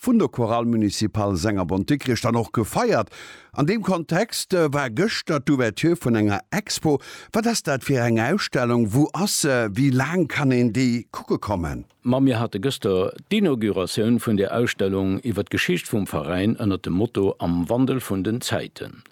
vun der Chorale Municipale Sengerbond-Dikrich dann och gefeiert. An deem Kontext war gëschter d'Ouverture vun enger Expo. Wat ass dat fir eng Ausstellung? Wou ass se? Wéi laang kann een déi kucke kommen? Ma mir hate gëschter d'Inauguratioun vun där Ausstellung iwwer d'Geschicht vum Veräin ënner dem Motto Am Wandel vun den Zäiten.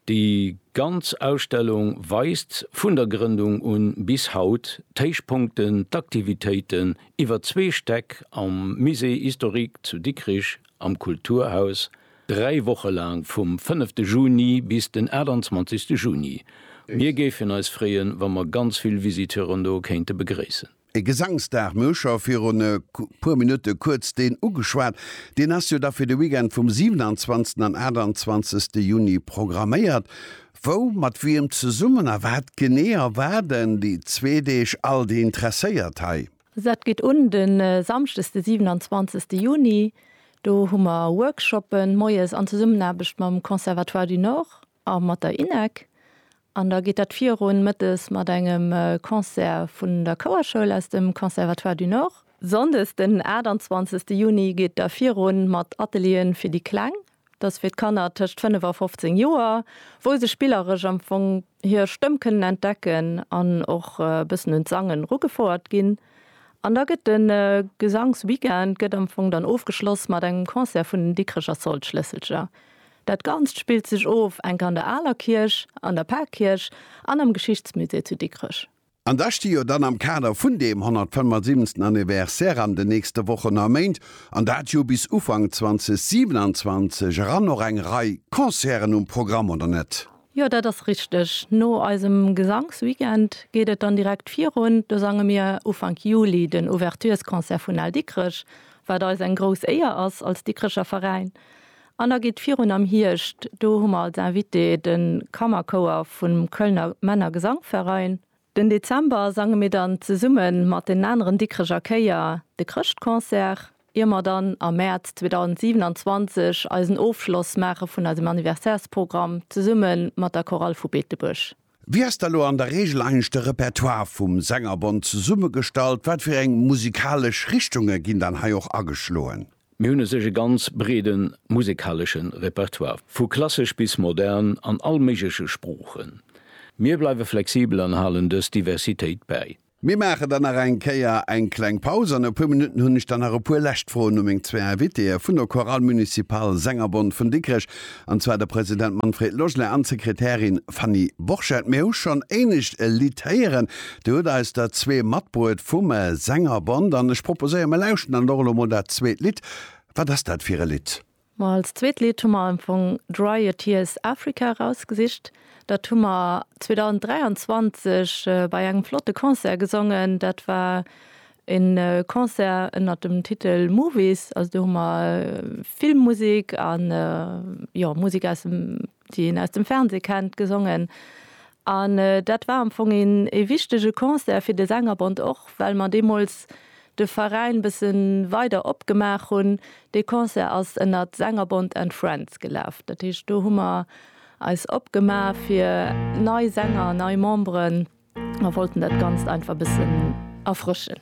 Déi ganz Ausstellung weist vun der Grëndung un bis haut d'Héichpunkten, d'Aktivitéiten, iwwer zwee Stäck am Musée historique zu Dikrich am Kulturhaus, dräi Woche laang vum 5 de Juni bis den 28 de Juni. Mir géifen eis freeën, wa mer ganz vill Visiteuren do kéinte begréissen. E Gesangsdag, mir hu scho virun e puer Minutte kuerz deen ugeschwat, deen ass jo da fir de Weekend vum 27 an 28 Juni programméiert. Wou, mat wiem zesummen a wat genee erwaarden déi zwee Deeg all déi Interesséiert hei? Dat geet un de Samschdes de 27 Juni. Do hu mer Workshoppe moies an Zesummenaarbecht mam Conservatoire du Nord a mat der INEC. An da geet dat virun mëttes mat engem Concert vun der Chouerschoul aus dem Conservatoire du Nord. Sonndes den 28 Juni geet da virun mat Atelieren fir déi Kleng Dat ass fir d'Kanner tëscht 5 a 15 Joer, wou se spilleresch am Fong hir Stëmm kënnen entdecken an och e bëssen un d'Sangen rugefouert ginn. An da gëtt de Gesangsweekend gëtt am Fong dann ofgeschloss mat engem Concert vun den Dikrecher Soldschlësselcher. Dat Ganzt spillt sech of enk an der Aler Kierch, an der Parkierch an am Geschichtsmusée zu Dikrech. An da sti jo dann am Kader vun deem 175. Anniversaire an de nächste Wochen a Méint, an dat jo bis Ufank 2027 eran, och eng Rei Concerten um Programm, oder net? Jo, dat ass richteg. No eisem Gesangsweekend geet et dann direkt virun. Do sange mir Ufank Juli den Ouverturesconcert vun Al Dikrech, wat eis eng grouss Éier ass als Dikrecher Veräin. An da geet et virun am Hierscht. Do hu mer als Invité de Kammerchouer vum Kölner Männergesangverein. Den Dezember sange mir dann zesumme mat den aneren Dikkrecher Chéier de Chrëschtconcert, ier mer dann am Mäerz 2027 eisen Ofschloss maache vun eisem Anniversairsprogramm zesumme mat der Chorale vu Beetebuerg. Wéi ass da lo an der Reegel eigentlech de Repertoire vum Sängerbond zesummegestallt? Wat fir eng musikalesch Richtunge ginn dann hei och ageschloen? Mir hunn u sech e ganz breede musekalesche Repertoire, vu klassesch bis modern an all méigleche Sproochen. Mir bleiwe flexibel an halen dës Diversitéit bäi. Mir maache dann nach eng Kéier eng kleng Paus. An e puer Minutten hunn ech dann nach e puer lescht Froen u meng zwee Invitéeë vun der Chorale Municipale Sängerbond vun Dikrech, an zwar de President Manfred Logelet an d'Sekretärin Fanny Borchert. Mir hu schonn éinescht e Lidd héieren. Dir hutt eis der zwee matbruet vum Sängerbond. An ech proposéieren, mir lauschten dann och elo mol dat zweet Lidd. Wat ass dat fir e Lidd? Ma als zweet Lidd hu mer am Fong Dry Your Tears Africa erausgesicht. Dat hu mer 2023 bei engem flotte Concert gesongen. Dat war e Concert ënnert dem Titel Movies. Also do hu mer Filmmusek an jo Musek aus dem. déi een aus dem Fernseh kennt, gesongen an dat war am Fong een ee wichtege Concert fir de Sängerbond och, well mer deemools de Veräin bësse weider opgemaach hunn. Dee Concert ass ënnert Sängerbond and Friends gelaf, dat heescht do hu mer eis opgemaach fir nei Sänger, nei Memberen. Mer wollten dat Ganzt einfach bëssen erfrëschen.